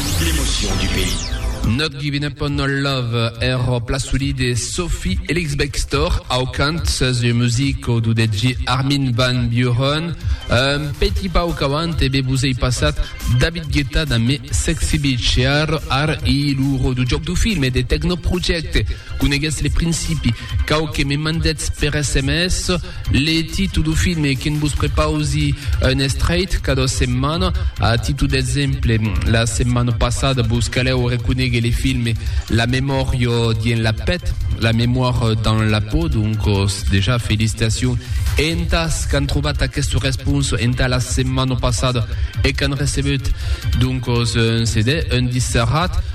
L'emotion du pays. Not Givin Up On Our Love er pla solid de Sophie Elix-Bextor au cant sus ua music au dudet de Armin Van Buuren. Un petit pauc avant e be vos ei passat David Guetta damb Me Sexy Bitch e ar ar i lo ro du joc du film e de Techno Project. Coneguetz le principi. Quauque me mandetz per sms. Le titu du filme que'n vos prepausi un estreit cada setmana. A titu d'exemple, la setmana passada vos calèu reconéguer le filme La memòria dien la pèt, La mémoire dans la peau, doncos dejà felicitacion e entàs qu'an trobat aquesta responsa entà la setmana passada e qu'an recebeut doncos un CD, un disc serrat.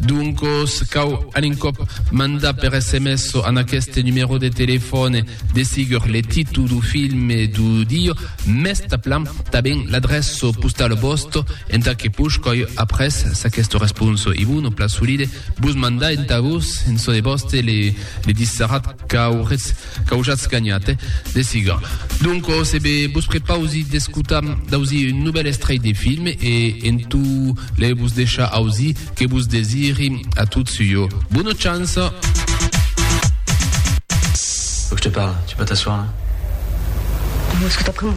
Doncos, cau an un còp mandar per sms an aqueste numèro de telefòne de sigur le titu du filme du dieu, mès taplan taben l'adrèço postalo vòsto entà que push coi après s'aquesto responso i vun o pla solide vos mandar entà vos en çò de vòste le dissarrat qu'auretz Qu'aujatz ganhat, eh? De siga. Donc, ò se be, vos prepausi d'escotar d'ausir un novèl estrèit de film e en tu le vos deishar ausir que vos desiri a tots ua bona chance. Faut que je te parle, tu peux t'asseoir là. Bon, est-ce que t'as pris mon.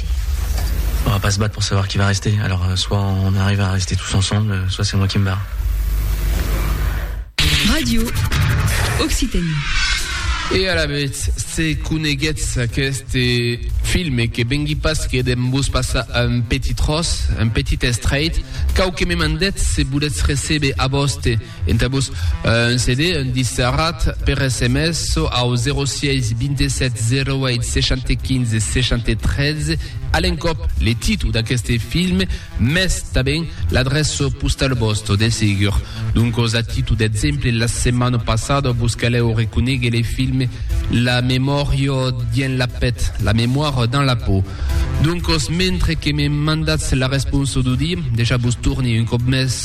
rester. On va pas se battre pour savoir qui va rester, alors euh, soit on arrive à rester tous ensemble, euh, soit c'est moi qui me barre. Radio Occitanie. E a la vez, se coneguetz aquest filme que vengui pas que dem vos passar un petit tros, un petit estrait, cau que me mandetz se voletz recebe a voste Entà-vos un CD, un disc serrat, per sms çò au 06 27 08 75 73, a l'encòp le títol d'aqueste film, mès tanben l'adreça postala vòsta, de segur. Doncas, a títol d'exemple, la setmana passada vos calèu reconéguer le film La memòria dins la pèth, La mémoire dans la peau. Doncas, mentre que me mandatz la responsa d'Audí, dejà vos torni un còp mès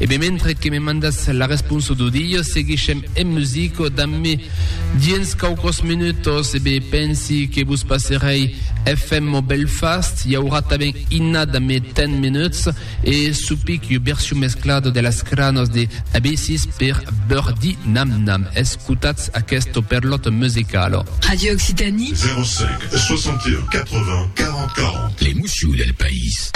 E ben mentre que me mandas la responsa do dia seguishem en musica dambe dins quauquos minutos e ben pensi que vos passerei FMO Belfast i aurà tanben Inna dambe 10 minuts e supic ua version mesclada de las cranas de Abysses per Birdie Nam Nam escotatz aquesta perlota musicala. Radio Occitanie. 05 61 80 40 40. Les moussions del país.